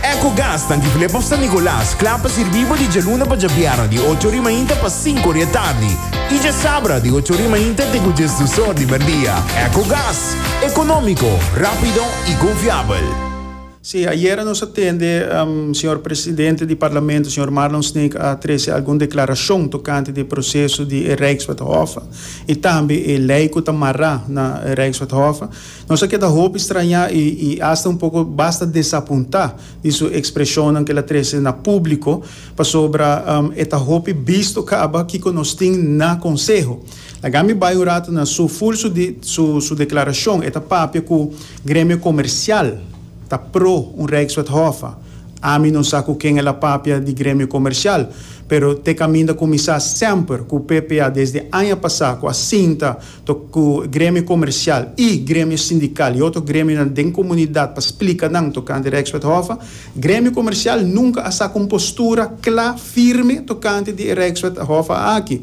Ecogas ta Antigulé pa San Nicolas, kla pa sirbí bo di djaluna pa djabierna di ocho ori mainta pa sinku ori e tardi i djasabra di ocho ori mainta te ku djes dus or di merdia. Ecogas, ekonómiko, rápido i konfiabel. Sí, ayera nos a tende señor presidente di Parlamento, señor Marlon Sneek, a trece algun declaracion tocante di e proceso di e Rijkswethof, y tambe e ley cu ta marra na e Rijkswethof. Nos a keda hopi strañá i i asta un poko basta desapuntá di su ekspreshonnan ku el a trese na públiko, pasobra e ta hopi bisto kaba kiko nos tin na konseho. Laga mi bai un ratu na su ful su di su su deklarashon. E ta papia ku gremio komersial ta pro un rijkswethofa. Ami no sa ku ken el a papia di gremio komersial, pero te kaminda kuminsá semper ku PPA desde aña pasá ku a sinta to ku gremio komersial i gremio sindikal i otro gremionan den komunidat pa splika nan tokante Rijkswethofa, gremio komersial nunka a saka un postura kla, firme tokante di e Rijkswethofa aki.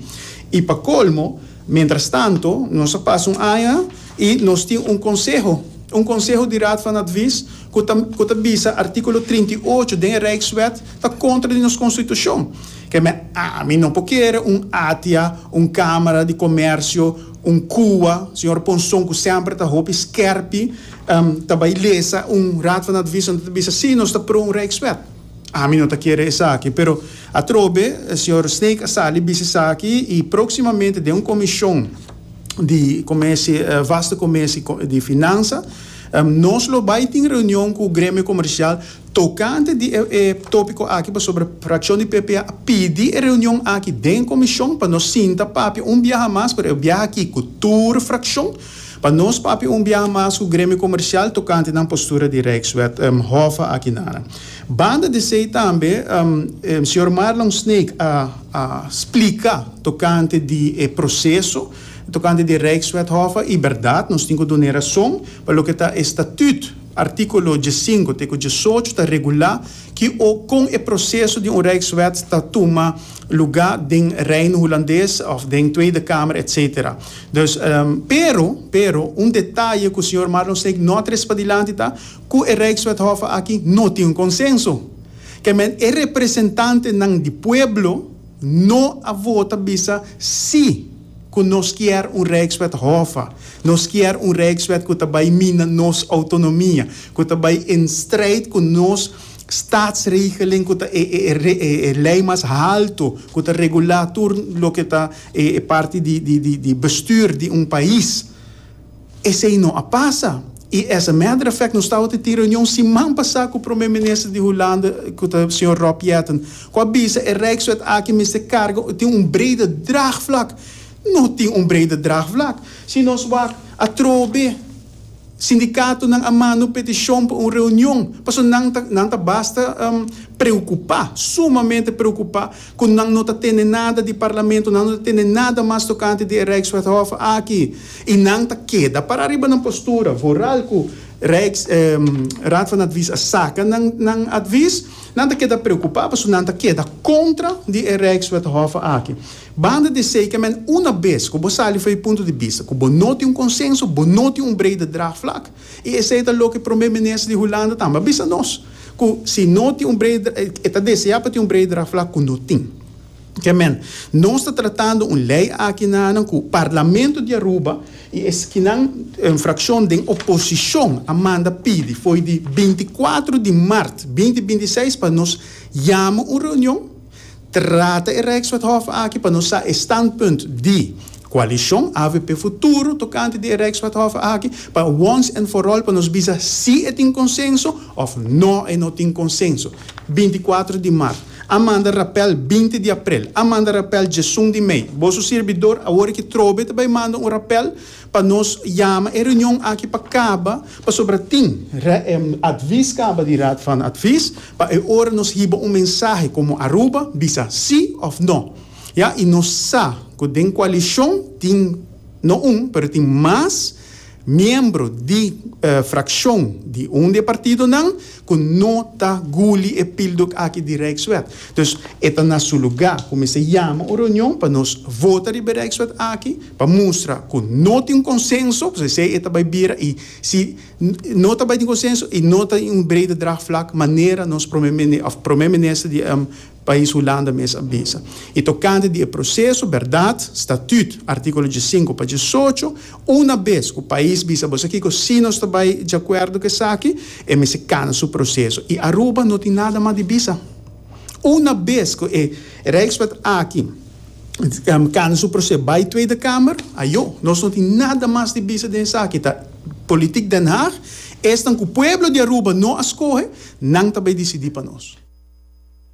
I pa kolmo, mientras tanto, nos a pasa un aña i nos tin un konseho, un konseho di Raad van Advies ku ta ku ta bisa artíkulo trinta i ocho den e Rijkswet ta kontra di nos konstitushon. Ke me ami no por kere un atia, un kamera di komersio, un kua, señor Ponson ku semper ta hopi skèrpi ta bai lesa un Raad van Advies en ta ta bisa sí nos ta pro un Rijkswet. Ami no ta kere esaki pero atrobe señor Snake a sali bisa esaki i próksimamente den un komishon di komesi vaste komesi di finansa nos lo bai tin reunion ku Gremio Komersial Tokante di e tópiko aki pasobra frakshon di PP a pidi e reunion aki den komishon pa nos sinta papia un biaha mas, pero e biaha aki ku tur frakshon, pa nos papia un biaha mas ku Gremio Komersial tokante nan postura di Rijkswet Hof aki nan. Banda di esei tambe señor Marlon Sneek a splika tokante di e proseso tokante di Rijkswet Hof i bèrdat nos tin ku dun'e rason pa loke ta e statùt Artíkulo diesinko te ku diesocho ta regulá ki o kon e proseso di un Rijkswet ta tuma lugá den Reino Hulandes òf den Tweede Kamer etsetera. Dus, pero, pero, un detaye ku señor Marlon Snake no a tres padilanti ta ku e Rijkswethòf aki no tin un konsenso. Kèmen e representantenan di pueblo no a vota bisa sí. cu nos kier un rijkswet hofa, nos kier un rijkswet cu ta bay mina nos autonomia, cu ta bay in strijd cu nos staatsregeling cu ta e e ley mas halto cu ta regula tur loke ta e e parti di di di bestuur di un pais. Esei no a pasa i as a matter of fact nos tabata tin reunion siman pasá ku Prome Minister di Hulanda ku ta señor Rob Jetten ku a bisa e Rijkswet aki mester karga tin un brede draagvlak. No tin un brede draagvlak. Si nos wak atrobe sindikatonan a manda un petishon pa un reunion pasobra nan ta nan ta basta preokupá, sumamente preokupá. ku nan no ta tene nada di parlamento, nan no ta tene nada mas tokante di e Rijkswethof aki, i nan ta keda para ariba nan postura, vooral ku Rijks, Raad van Advies a saka nan, nan advies, nan ta keda preokupá, pasobra nan ta keda kontra di e Rijkswethof aki. Banda di esei ke men, una bes ku bo sali for e punto di bista ku bo no tin un konsenso, bo no tin un brede draagvlak, I esei ta loke Prome Minister di Hulanda tambe a bisa nos, ku si no tin un brei dra, e ta deseá pa tin un brei draft la ku no tin. Ke men, nos ta tratando un lei aki nanan ku Parlamento di Aruba i eskinan frakshon den oposishon a manda pidi fo'i di binti kuatru di mart binti binti seis pa nos yama un reunion, Trata e Rijkswethof aki pa nos sa e standpunt di Coalicion avp Futuro tocante di e Rijkswethof aki pa once and for all pa nos bisa si e tin consenso of no e no tin consenso. Binti cuatro di Mart a manda rapel binti di April a manda rapel djesun di Mei. Boso sirbidor awor aki trobe ta bay manda un rapel. Pa nos yama e reunion aki pa kaba pasobra tin advis kaba di Raad van Advies pa e ora nos hiba un mensahe komo Aruba bisa si òf no ya i nos sa ku den koalishon tin no un pero tin mas miembro di frakshon di un di e partidonan ku no ta guli e píldok aki di Rijkswet. Dus e ta na su lugá ku mester yama un reunion pa nos vota riba e Rijkswet aki pa mustra ku no tin konsenso, pues esei e ta bai bira i si no ta bai tin konsenso i no ta in un brede draagvlak manera nos Prome Minister di Pais Hulanda mes a bisa. I tokante di e proseso, bèrdat, statüt, artíkulo diesinko pa diesocho, una bes ku pais bisa boso kiko si nos ta bai diakuerdo ku esaki, e mester kana su proseso. I Aruba no tin nada mas di bisa. Una bes ku e Rijkswet aki kana su proseso bai Tweede Kamer, ayo, nos no tin nada mas di bisa den esaki. Ta politik Den Haag, esnan ku pueblo di Aruba no a skohe, nan ta bai disidí pa nos.